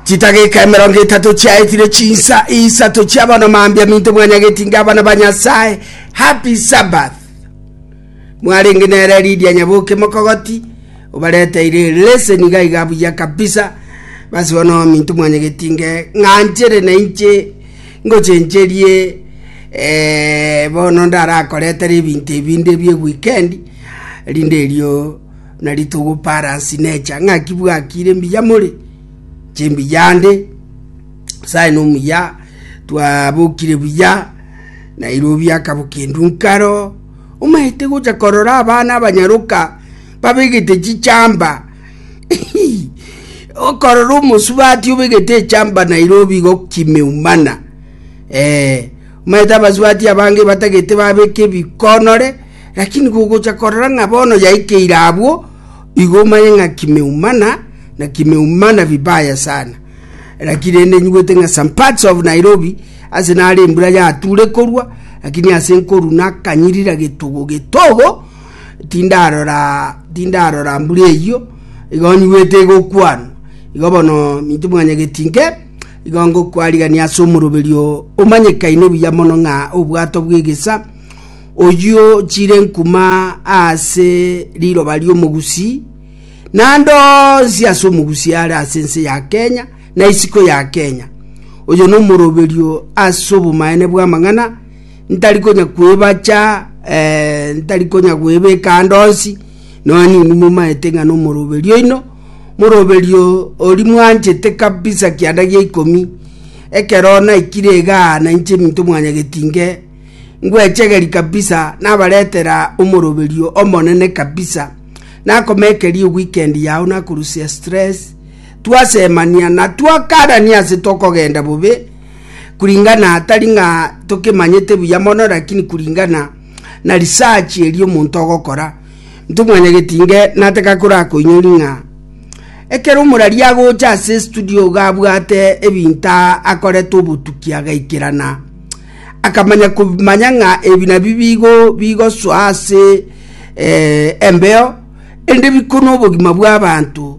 Chidageka emerongo etato chiaetire chinsa isato chiabono mambia minto mwanyagetinga abana ba Nyasaye happy sabbath mwarenge nere Lydia Nyaboke mokogoti obareteire leseni iga iga buya kabisa basi bono minto mwanyagetinge ng'anchere na inche ngochencherie eh, bono ndarakoretere ebinto ebinde bie weekend rinde erio na ritugu parasi necha, ng'aki bwakire mbuya more chimbuya ande sae nomuya twabokire buya nairobi akabo kindu nkaro omaete gocha korora abana abanyaroka babegete chichamba okorora omosubati obegete echamba nairobi igo kimeumana eh, Omanyete abasubati abange batagete babeke bikonore, lakini gogocha korora ng'a bono yaikeire abwo, igo omanye ng'a kimeumana na kimeumana vibaya sana. Lakini rende nyigwete ng'a some parts of Nairobi ase nare embura yature korwa, lakini ase nkoru nakanyirira getogo getogo tindarora tindarora mbura eyio, igo nyigwete egokwanwa. Igo bono minto mwanyageti inke Igo ngokwarigania ase omoroberi oo omanyekaine buya mono ng'a obwato bw'egesa, oyio chire nkuma ase riroba ri'omogusi, naende onsi ase omogusi are ase ense ya Kenya na isiko ya Kenya. Oyo nomoroberio ase obomaene bw'amang'ana, ntari konya kwebacha, eh, ntari konya gwebeka ande onsi, nonya ninwe momaete ng'a nomoroberi oino, Moroberio oria mwanchete kabisa kianda gia ikomi, ekero naikire iga aa nainche minto mwanyagetinge, ngwechegeri kabisa nabaretera omoroberio omonene kabisa, nakomekeria weekend yao nakorusia stress, twasemania na twakarania ase tokogenda bobe kuringana tari ng'a tokemanyete buya mono lakini kuringana na research eria omonto ogokora. Ntimwanyagetinge nataka korakoinyori ng'a ekero omorari agocha ase estudio iga abwate ebinto akorete obotuki agaikerana, akamanya komanya ng'a ebi nabio bigo bigosoa ase embeo erinde bikone obogima bw'abanto.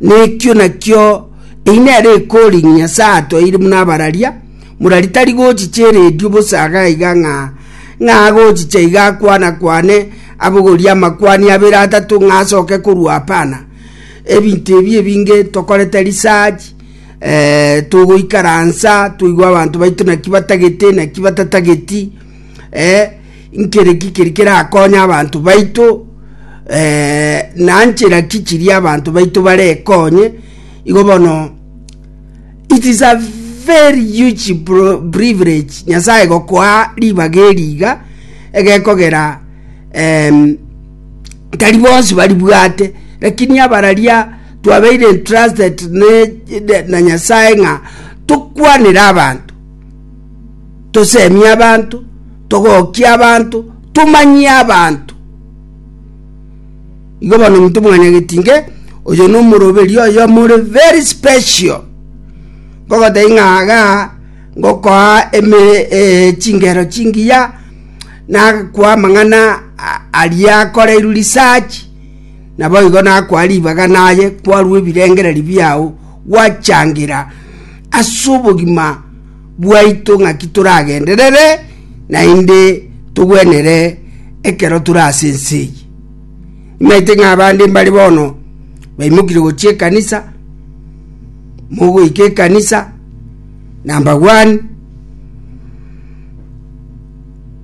Nekio nakio, eyi nere ecoring Nyasae atoeire buna abararia. Murari tari gochicha eredio bosa gaiga ng'a nagochicha iga akwana-kwane abogorie amakuani abere atato ng'a asoke korwa hapana. Ebinto ebi ebinge tokorete research, eh, togoikaransa toigwe abanto baito naki batagete naki batatageti, eh, nkere ki keri kerakonye abanto baito, eh, na nchera ki chiria abanto baito barekonye, igo bono. It is a very huge privilege Nyasae gokoa ribaga eri iga egekogera um, tari bonsi baribwate lakini abararia twabeire entrusted na Nyasae ng'a tokwanere abanto tosemie abanto togokia abanto tumanyie abanto Igo bono intwe mwanyageti inge, oyo nomoroberi oyomo ore very special, ngogotebi ng'a iga ngokoa eme eh, chingero chingiya, nakoa amang'ana a- aria akoreirwe research, naboigo nakoa ribaga naye kwarwa ebirengererio biao gwachangira as'obogima bwaito ng'aki toragenderere, naende togwenere ekero tore ase ense eye. Nimaete ng'a abande mbare bono baimokirie gochia ekanisa, mogoika ekanisa, namba one,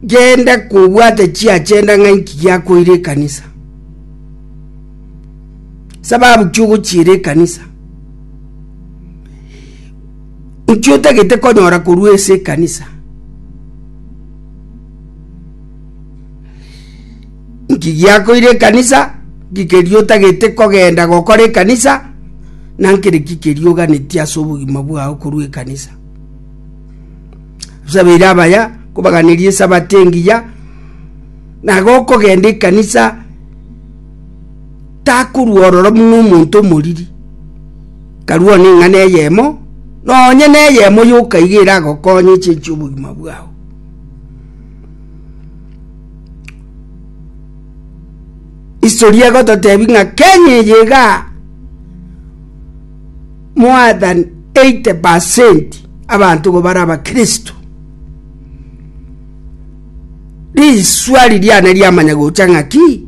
genda kobwate chiachenda ng'a inki giakoire ekanisa, sababu chiogochiera ekanisa. Inki otagete konyora korwa ase ekanisa? Inki giakoire ekanisa? Inki keria otagete kogenda gokora ekanisa? Na nkereki keria oganetie ase obogima bwao korwa ekanisa? Abasabeire abaya kobaganeria esabato engiya, na gokogenda ekanisa Takorua ororo buna omonto omoriri, karua one ing'ana eyemo, nonye neyemo yoka iga eragokonye echenchie obogima bwao. History egototebi ng'a Kenya eye iga more than 80% abanto igo bare abakristo riswali riane riamanya gocha ng'aki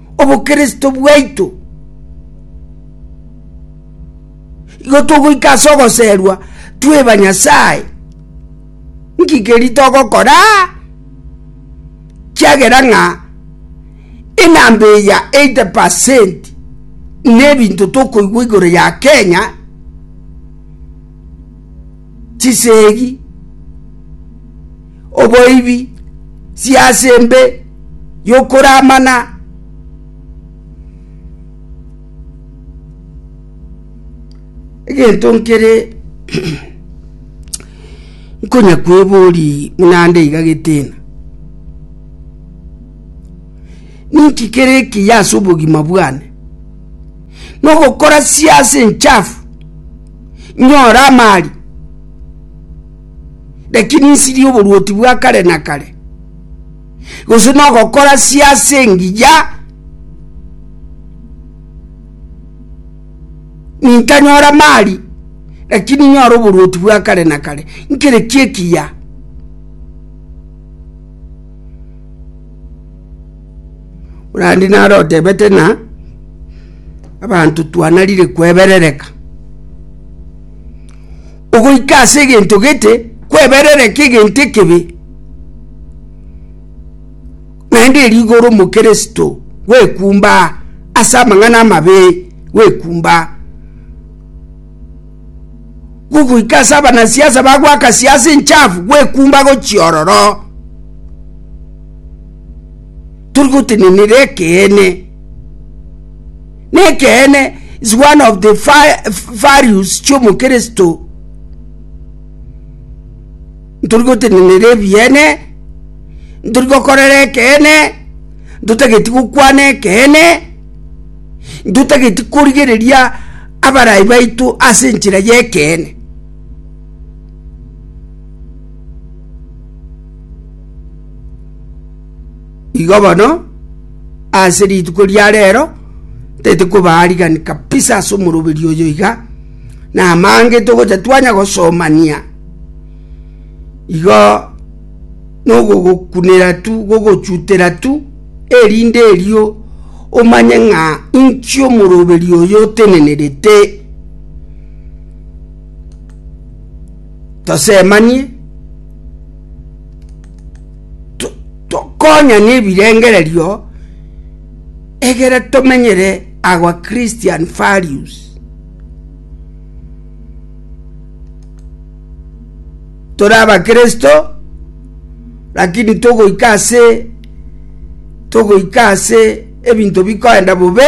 Obokristo bwaito, igo togoika ase ogoserwa tweba Nyasae. Nki keri togokora? Kiagera ng'a enamba eya 80 percent nebinto tokoigwa igoro ya Kenya chisegi, oboibi, siasa embe, yokoramana, egento nkere nkonya kwebori munande iga getena ninki kere ekiya ase obogima bwane nogokora siasa enchafu nyore amari, lakini nsirie oboruoti bwa kare na kare, gose nogokora siasa engiya, nintanyora amari, lakini nyore oboruoti bwa kare na kare, nkerekie ekiya. Korende naro otebete ng'a abanto twanarire kweberereka. Ogoika ase egento gete, kweberereka egento ekebe, naende erigo ore omokristo gwekumba ase amang'ana amabe, gwekumba. Gogoika ase abanasiasa bagoaka siasa enchafu gwekumba gochiororo. Turi gotenenera ekeene. Nekeene is one of the values chiomokristo. Nturi gotenenera ebiene nturi gokorera ekeene ntotageti gokwana ekeene ntotageti korigereria abarai baito ase enchera y'ekeene. Igo bono ase rituko ria rero ntete kobaarigani kabisa ase omoroberi oyo iga na amange togocha twanya gosomania igo nogogokunera tu, gogochutera tu, erinde erio omanye ng'a inki omoroberi oyo otenenerete. Tosemanie, tokonyane ebirengererio egere tomenyere our Christian values. tore abakristo lakini togoika ase togoika ase ebinto bikoenda bobe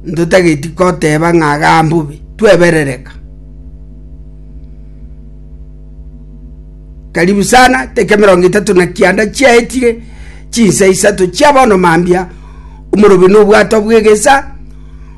ntotageti koteba ng'a gambobe tweberereka karibu sana teke mirongo itatu na kianda chiaetire chinsa isato chia bono mambia omorobi nobwato bwegesa